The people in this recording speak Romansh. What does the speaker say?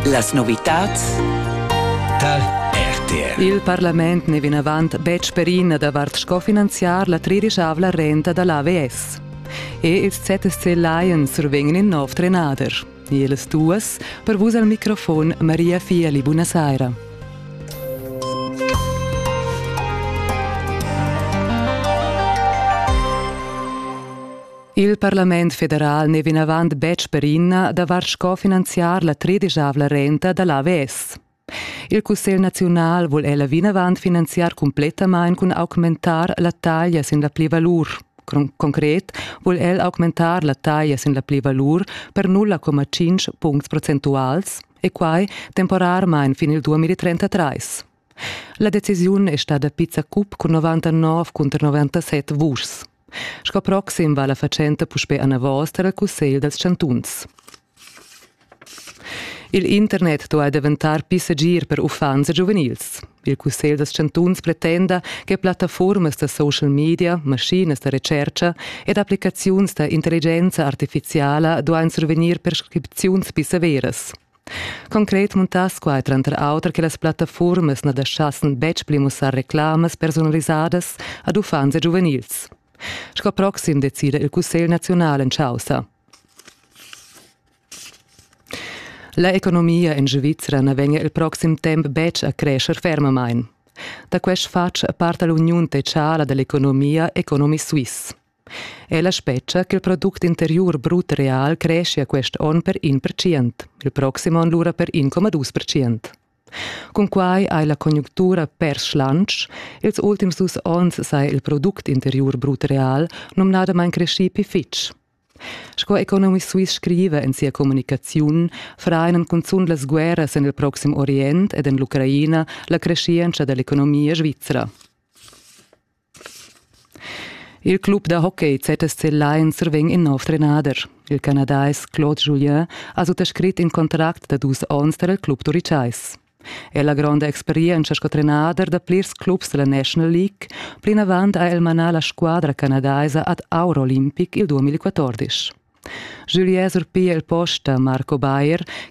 Las novitads tar RTR. Il parlament n'è vinavant betg perina davart sco finanziar la tridischavla renta da l'AVS. E ils ZSC Lions survegnan in nov trenader. Ils duas per vus al microfon Maria Fiali, buonasera. Il parlament federal n'è vinavant betg perinna davart sco finanziar la tredisavla renta da l'AVS. Il Cussegl naziunal vul ella vinavant finanziar cumplettamain cun augmentar la taglia sin la plivalur. Concret vul el augmentar la taglia sin la plivalur per 0,5 puncts procentuals e quai temporarmain fin il 2033. La decisiun è stada pizza cup cun 99 cunter 97 vuschs. Sco proxim va la fatschenta puspè anavos tar il Cussegl dals chantuns. Il internet duai daventar pli segir per uffants e giuvenils. Il Cussegl dals chantuns pretenda che plattaformas da social media, maschinas da recerca ed applicaziuns da intelligenza artifiziala duain survegnir prescripziuns pli severas. Concret muntass quai tranter auter che las plattafurmas na daschassen betg pli mussar reclamas personalisadas ad uffants e giuvenils. Sco proxim decida il Cussegl naziunal en chaussa. La economia en Svizzera na vegnia il proxim temp betg a crescer fermamain. Da quest fatg parta l'uniun techala dall'economia Economy Suisse. Ella spetga ch'il product interiur brut real creschia quest onn per in percient, il proxim onn lura per 1,2 percent. Cunquai hai la conjunctura pers schlantsch, ils ultims dus onns saja il product interiur brut real numnadamain creschì pli fitg. Sco Economy Suisse scriva en sia communicaziun, frain cunzunt las guerras en il proxim Orient ed en l'Ucraina la creschientscha da l'economia svizra. Il club da hockey ZSC Lain survegn in nov trenader. Il canadais Claude Julien ha suttascrit in contract da dus onns tar il club turitschais. El ha gronda experientscha sco trenader da plirs clubs dalla National League. Plinavant ha el manà la squadra canadaisa ad Auro Olympic il 2014. Julien surpiglia il post da Marco Bayer,